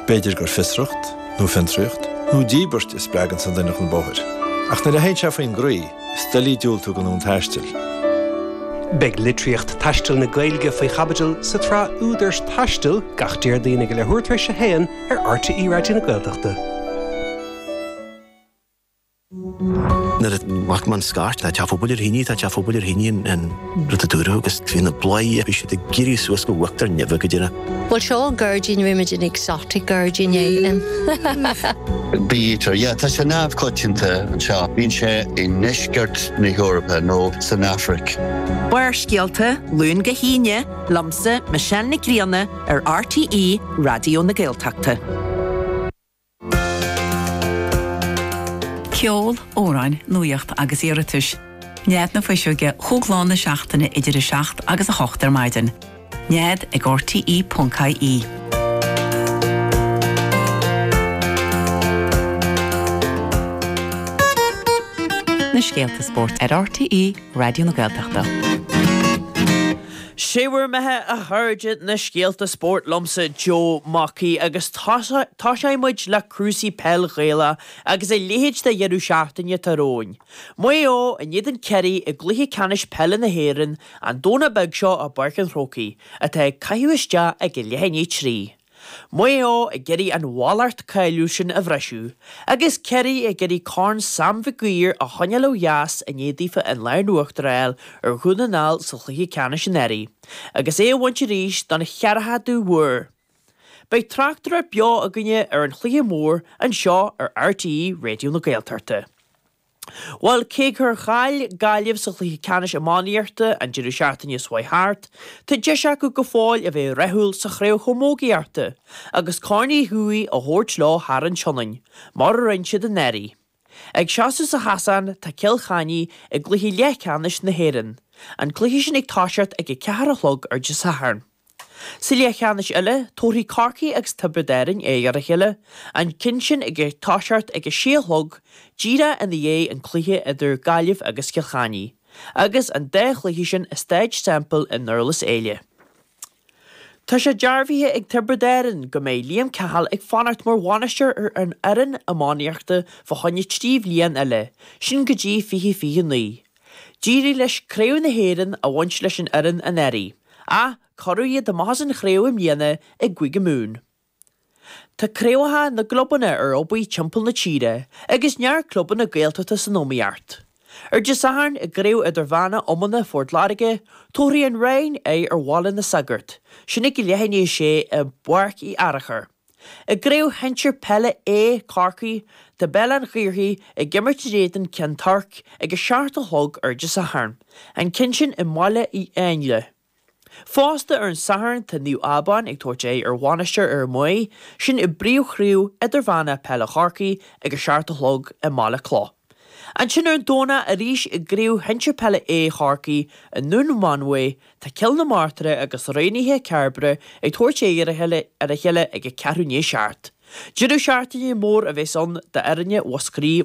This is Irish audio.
B'fhéidir gur fiosracht, nó fiontraíocht, nó díbirt a spreagann sa nduine chun bóthair, ach nuair a théann sé faoin gcroí, is doiligh diúltú go ndomhan taistil. Beidh litríocht taistil na Gaeilge faoi chaibidil sa tsraith Údar is Taisteal gach Déardaoin ag a leathuair tar éis a haon ar RTÉ Raidió na Gaeltachta. Nuair a tháinig an scairt, tá teach pobail ar thine, tá teach pobail ar thine, an rud a dúradh agus bhí na bladhairí, bhí siad ag éirí suas go huachtar neimhe go deimhin. Bhuel, seo an gairdín, rinne muid an exotic gairdín éigin. Bítear, yeah, tá sé neamhchoitianta anseo, bíonn sé i ndeisceart na hEorpa nó san Afraic. Barrscéalta, Luan go hAoine, liomsa, Michelle Nic Grianna, ar RTÉ Raidió na Gaeltachta. Ceol, amhráin, nuaíocht agus iarratais. Nead na Fuiseoige chúig mhaidin na seachtaine idir 7 agus 8 ar maidin. Nead ag RTE.ie. Na scéalta spóirt ar RTÉ Raidió na Gaeltachta. Sé bhur mbeatha a chairde na scéalta spóirt liomsa Joe Mackey agus toiseoidh muid le cúrsaí peil Ghaelach agus a leithéid de dheireadh seachtaine atá romhainn. Maigh Eo in éadan Chiarraí i gcluiche ceannais peile na hÉireann an Domhnach beag seo i bPáirc an Chrócaigh, atá ag caitheamh isteach ag leath i ndiaidh a 3. Maigh Eo ag iarraidh an mhallacht cháiliúil sin a bhriseadh agus Ciarraí ag iarraidh Corn Sam Mhic Uidhir a choinneáil ó dheas i ndiaidh daofa an lámh in uachtar a fháil ar Dhún na nGall sa chluiche ceannais anuraidh agus é a bhaint arís don cheathrachadú huair. Beidh tráchtaireacht bheo againne ar an chluiche mór anseo ar RTÉ Raidió na Gaeltachta. Bhuel, cé gur chaill Gaillimh sa chluiche ceannais iománaíochta an deireadh seachtaine seo a chuaigh thart, tá deis acu go fóill a bheith rathúil sa chraobh chamógaíochta agus Corn Uí Dhubhthaigh a thabhairt leo thar an tSionainn, mar a rinne siad anuraidh. Ag seasamh sa chasán tá Cill Chainnigh i gcluiche leathcheannais na hÉireann, an cluiche sin ag toiseacht ag a ceathair a chlog ar an Satharn. Sa leathcheannais eile, tabharfaidh Corcaigh agus Tiobraid Árainn aghaidh ar a chéile, an ceann sin ag toiseacht ag a sé a chlog, díreach i ndiaidh an cluiche idir Gaillimh agus Cill Chainnigh, agus an dá chluiche sin i Stáid Semple i nDurlas Éile. Tá sé dearbhaithe ag Tiobraid Árainn go mbeidh Liam Cahill ag fanacht mar bhainisteoir ar an fhoireann iománaíochta fá choinne trí bhliain eile, sin go dtí 2029. D'éirigh leis Craobh na hÉireann a bhaint leis An Éireann anuraidh, ach cuireadh iad amach as an chraobh i mbliana i gCúige Mumhan. Tá craobhacha na gclubanna ar obair timpeall na tíre agus neart clubanna Gaeltachta san iomaíocht. Ar Dé Sathairn i gCraobh Idirmheánach Iomána Phort Láirge, tabharfaidh An Rinn aghaidh ar Bhaile na Sagart, sin ag a leath i ndiaidh a sé i bPáirc Uí Fhearachair. I gcraobh shinsir peile A, Corcaigh, tá Béal Átha an Ghaorthaidh ag imirt in éadan Cheann Toirc ag a seacht a chlog ar Dé Sathairn, an ceann sin i mBaile Uí Éinle. Fosta ar an Satharn tá Naomh Abán ag tabhairt aghaidh ar Mhainistir Fhear Maí, sin i bpríomhchraobh idirmheánach peile Chorcaí ag a seacht a chlog i mBaile Cloch. Ansin ar an Domhnach arís i gCraobh Shinsir Peile A Chorcaí i nDún Mánmhaí, tá Cill na Martra agus Raonaithe Chairbre ag tabhairt aghaidh ar a chéile ag a ceathrú i ndiaidh a seacht. Deireadh seachtaine mór a bheas ann d'fhoirne Mhúscraí.